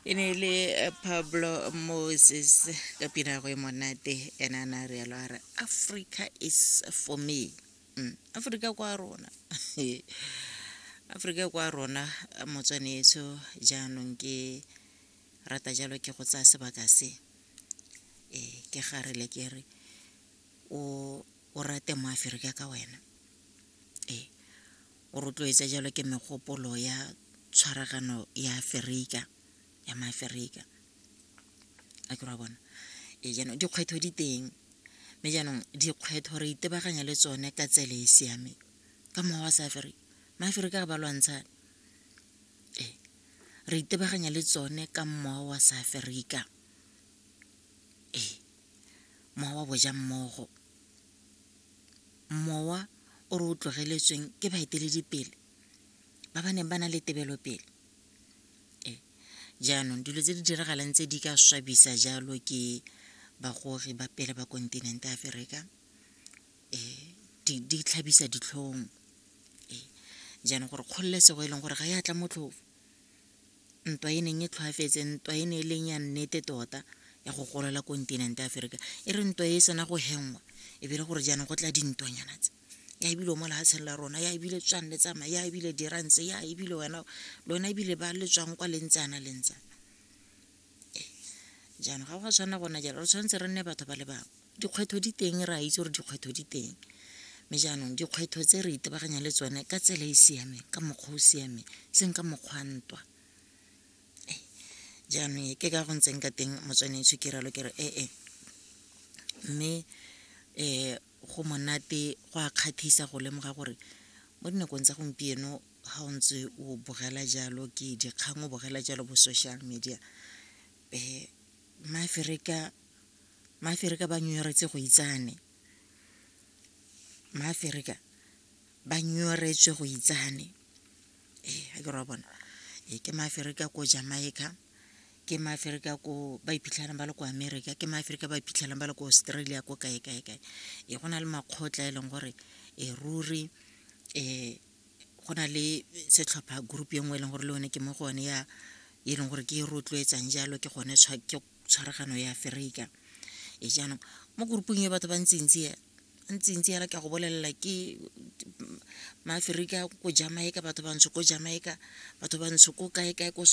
e ne e le eh, pablo moses ka pina go e monate ena na re yalo a re africa is for me mm. africa kwa rona africa kwa rona motswanetso jaanong ke rata jalo ke go tsaya sebaka se e ke garele ke re o rate mo aferika ka wena o rotloetsa jalo ke megopolo ya tshwaragano ya aferika ya maaferika a ke ra bona e jaanong dikgwetlho di teng mme jaanong dikgwetlho re itebaganya le tsone ka tsele e siameng ka mokgwa wa sa aferika maaferika ga ba lwantsha e re itebaganya le tsone ka mmoa wa sa aferika ee mowa wa boja mmogo mowa o re o tlogeletsweng ke baeteledipele ba ba neng ba na le tebelopele ee jaanong dilo tse di diragalang tse di ka swabisa jalo ke bagogi ba pele ba kontinente aferika di tlhabisa ditlhong ee jaanong gore kgololesego e leng gore ga e a tla motlhofo ntwa e neng e tlhwaafetse ntwa e ne e leng ya nnete tota ya go golola kontinente ya aferika e re ntwa e sena go hengwa e bile gore jaanong go tla dintwanyana tse ya ebile o mo lehatsheng la rona ya ebile tswang le tsamaya ya ebile dirantse ya ebile wena lona ebile ba le tswang kwa lentsana lentsana jaanong ga go a tshwana gona jalo re tshwanetse re nne batho ba le bangwe dikgwetlho di teng re a itse gore dikgwetlho di teng mme jaanong dikgwetlho tse re itebaganyang le tsone ka tsela e e siameng ka mokgwa o siameng seng ka mokgwa ntwa jaanong ke ka go ntseng ka teng motswanetso ke ralo ke re ee mme um go monate go a kgathisa go lemoga gore mo dinakong tsa gompieno ga o ntse o bogela jalo ke dikgang o bogela jalo bo social media um maaferika maaferika ba nyoretse go itsane maaferika ba nyoretswe go itsane ee ga ke ra bona ee ke maaferika ko jamaica ke maaferika ko ba iphitlhelang ba le ko america ke maaferika ba iphitlhelang ba le ko australia ko kae kae kae ee go na le makgotla e leng gore e ruri um go na le setlhopha group e nngwe e leng gore le one ke mo go one ya e leng gore ke e rotloetsang jalo ke gone ke tshwaragano ya aferika e jaanong mo groupong e batho ba ntsintsi ya ntsintsi yala ke go bolelela ke maaferika ko jamaica batho bantsho ko jamaica batho bantsho ko kae kae ko